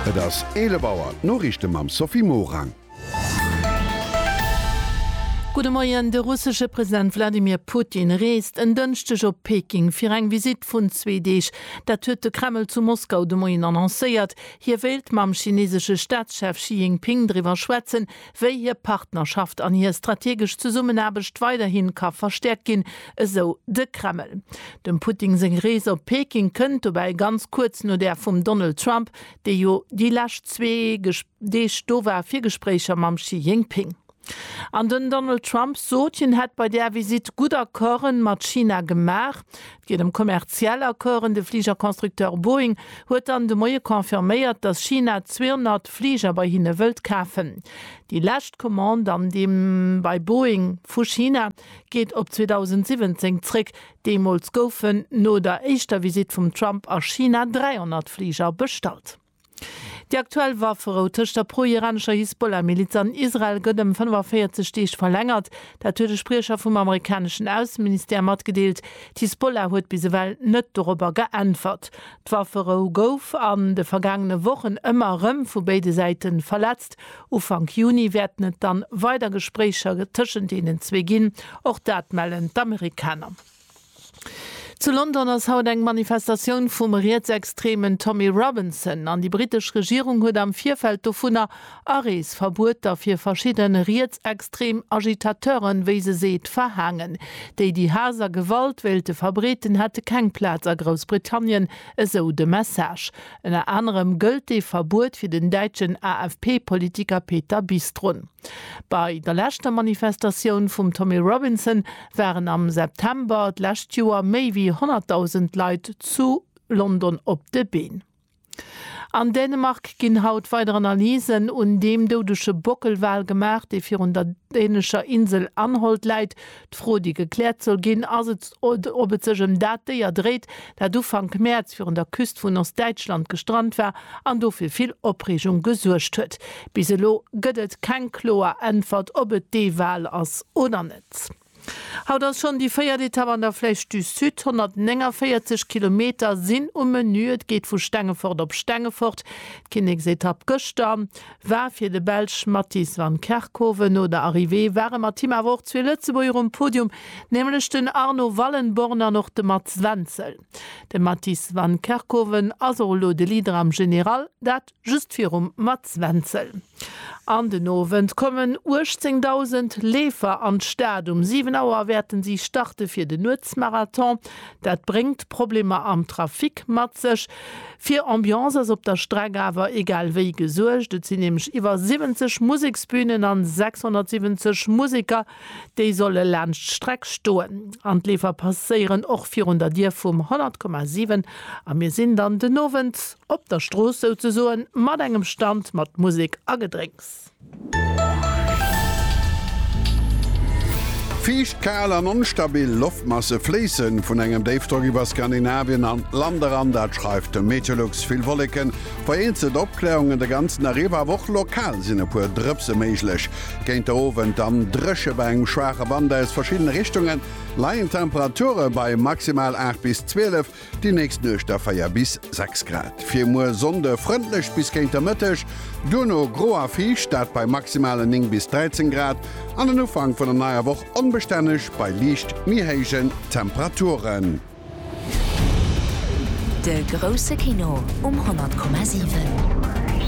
Et ass 11 Auer, d'Noriichte mam Sophie Morang. Gudde Moien, De russesche President Wladimir Putin reest en Dënschdeg op Peking fir eng Visitt vun zwee Deeg. Dat huet de Kreml zu Moskau de Moien annoncéiert. Hie wéilt mam chineesesche Staatschef Xi Jinping driwwer schwätzen, wéi hir Partnerschaft an hir strategesch Zesummenaarbecht weiderhi ka verstäerkt ginn, esou de Kreml. Dem Putin seng Rees op Peking kënnt dobäi ganz kuerz no där vum Donald Trump, dee jo déi lescht zwee Deeg do war fir Gespréicher mam Xi Jinping. An den Donald Trump sot, hien hätt bei där Visitt gutt Accorden mat China gemaach. Et geet ëm kommerziell Accorden. De Fligerconstructeur Boeing huet dann de Moie confirméiert, datt China 200 Fliger bei hinne wëllt kafen. Déi lescht Commande an deem bei Boeing vu China geet op 2017 zréck. Deemools goufen no der éischter Visitt vum Trump a China 300 Fliger bestallt. Déi aktuell Wafferou tëscht der pro-iranescher Hisbollah-Miliz an Israel gëtt ëm 45 Deeg verlängert. Dat huet e Spriecher vum amerikaneschen Ausseministère matgedeelt. D'Hisbollah huet bis ewell net dorobber geäntwert. D'Wafferou gouf an de vergaangene Wochen ëmmer erëm vu béide Säite verletzt. Ufank Juni wäerten et dann weider Gespréicher tëschent deenen zwee ginn, och dat mellen d'Amerikaner. Zu London ass haut eng Manifestatioun vum Rietsextremen Tommy Robinson an déi britesch Regierung huet am Virfeld dovunner Areesverbueter fir verschidde rietsextrem Agitateuren, wéi se seet, verhaangen. Déi, déi Haass a Gewalt wéilte verbreeten, hätte keng Plaz a Groussbritannien, esou de Message. Ënner anerem gëllt dee Verbuet fir den däitschen AFP-Politiker Peter Bistrun. Bei der leschter Manifestatioun vum Tommy Robinson waren am September d'lescht Joer méi wéi 100.000 Leit zu London op de Been. An Dänemark ginn haut weider Analysen un deem doudege Bockelwal gemaach, dee virun der dänescher Insel Anholt läit, D'Fro, déi gekläert soll ginn, ass et, ob et sech ëm dat Déier dréit, dat Ufank Mäerz virun der Küst vun Ostdäitschland gestrant war an do fir vill Opreegung gesuergt huet. Bis elo gëtt et keng kloer Äntwert, ob et dee Wal ass oder net. Haut ass schonn déi véiert Etapp an der Flèche du Sud. 149 Kilometer sinn um Menü. Et geet vu Stengefort op Stengefort, d'Kinneksetapp gëschter. war fir de Belsch Matthijs van Kerkhove. No der Arrivée ware mat him awer och zwee Lëtzebuerger um Podium, nämlech den Arno Wallenborn an och de Mats Wenzel. De Matthijs van Kerkhove ass och elo de Leader am General, dat just virum Mats Wenzel. An den Owend kommen 18.000 Leefer an d'Stad. Um 7 Auer wäerten si starte fir den Nuetsmarathon. Dat bréngt Problemer am Trafic mat sech. Fir Ambiance ass op der Streck awer egal wéi gesuergt. Et sinn nämlech iwwer 70 Museksbünen an 670 Museker, déi solle laanscht d'Streck stoen. An d'Leefer passéieren och virun der Dier vum 100,7 a mir sinn dann den Owend op der Strooss souzesoen mat engem Stand mat Musek a Gedrénks. Fiicht, kal an onstabil Loftmasse fléisse vun engem Déifdrock iwwer Skandinavien an d'Land eran, dat schreift de Meteolux. Vill Wolleken, vereenzelt Opkläerungen de ganzen Dag iwwer, awer och lokal sinn e puer Drëpse méiglech. Géint de Owend dann dréche bei engem schwaache Wand aus verschiddene Richtungen, leien d'Temperature bei maximal 8 bis 12. Déi nächst Nuecht da 4 bis 6 Grad. Fir muer Sonnde frëndlech bis géint der Mëtteg, duerno gro a fiicht, dat bei maximalen 9 bis 13 Grad, an den Ufank vun der neier Woch onbestänneg bei liicht méi héijen Temperaturen. De grousse Kino um 100,7.